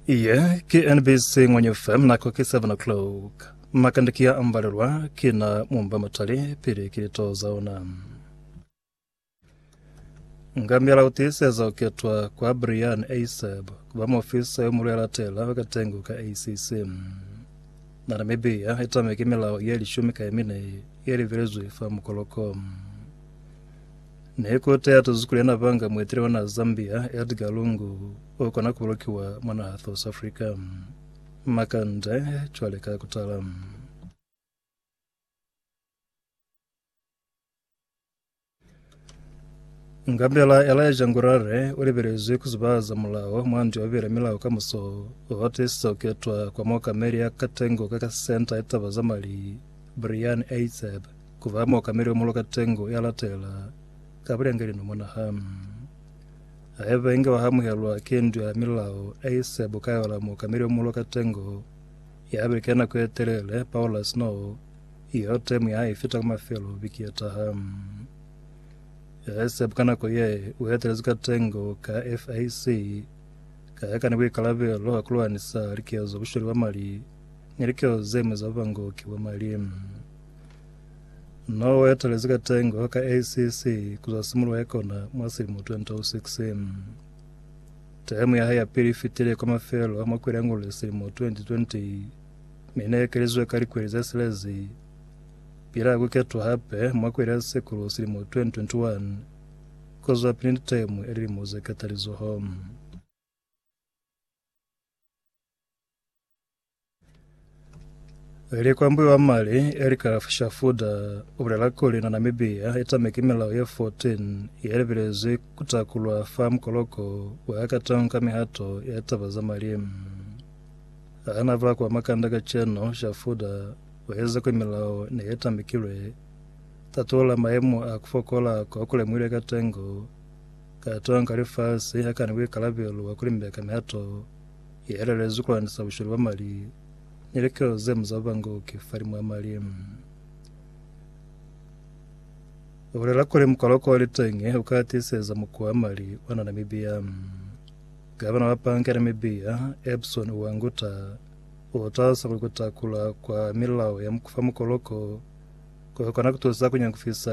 Iye ki NBC Ngwenye FM nako ki 7 o'clock. Makande ki ya ambalelwa ki na mumba matali pili ki lito za ona. Ngamyala utiiseza uketwa kwa Brian Asab kuba muofisa yo mulwela tela wakatengo ka ACC. Na Namibia itameke milao ye lishumi ka yemine ye livelezwe fa mukoloko. Ne ku teatuzi kuli yena banga muetele wa naha Zambia, Edgar Lungu, u kona ku bolokiwa mwa naha South Africa. Makande cwale ka kutala. Ngambela ya laeja ngurare u libelezwi ku zubahaza mulao mwa ndu ya bubeli ya milao ka muso wa tiisisa ku ketwa kwa muokameli ya katengo ka ka Senta ya Taba za Mali, Brian Eizeb. Ku ba muokameli wa muloka tengo ya latela ka bulengeli no mona ha haiba inge wa hamuhelwa ki ndu ya milao e ise bukayola muokameli wa muloka tengo ya beke nako ye telele paula sino yo temu ya hae fita ka mafelo biki ye taha. Ise buka nako ye u etelezi ka tengo ka FAC ka ya ka ni buikalabelo ha ku lwanisa likezo bushweli bwa mali ni likeo ze mi za bubangoki bwa mali. Na o etelezi ka tengo ka ACC ku zwa simuluho ya kona mwa silimo 2006. Temu ya hae ya pili i fitile kwa mafelo a mwa kweli ya Ngolole silimo 2020, mi ne ekelizizwe ka likweli ze silezi pila ku ketwa hape mwa kweli ya Sekulu silimo 2021 ku zwapili ni temu ya lilimo ze katalizoho. Likwambi wa mali Elikaraf Shafuda ubulela kuli na Namibia itame ki milao ye 14 yelebelezwi kutakulwa fa mukoloko wa Hackathon ka mihato ya taba za mali. Hana bula kwa Makanda kacenu, Shafuda ueleza kuli milao ne yetamekilwe tatulula maemo a kufokola ko kulemuhile ka tengo ka tonga lifasi hakani buikalabelo bwa kulimbeka mihato Ye elelezi ku landisa bushwele bwa mali ni likelelo ze mu za bubangoki fa limu ya mali. U bulela kuli mukoloko wa litenge u ka tiiseza mukuwa wa mali wa na Namibia. Gavana wa banka ya Namibia, Epson Uwanguta, u talisa kuli ku takula kwa milao ya fa mukoloko ku kona ku tusa ku nyangufisa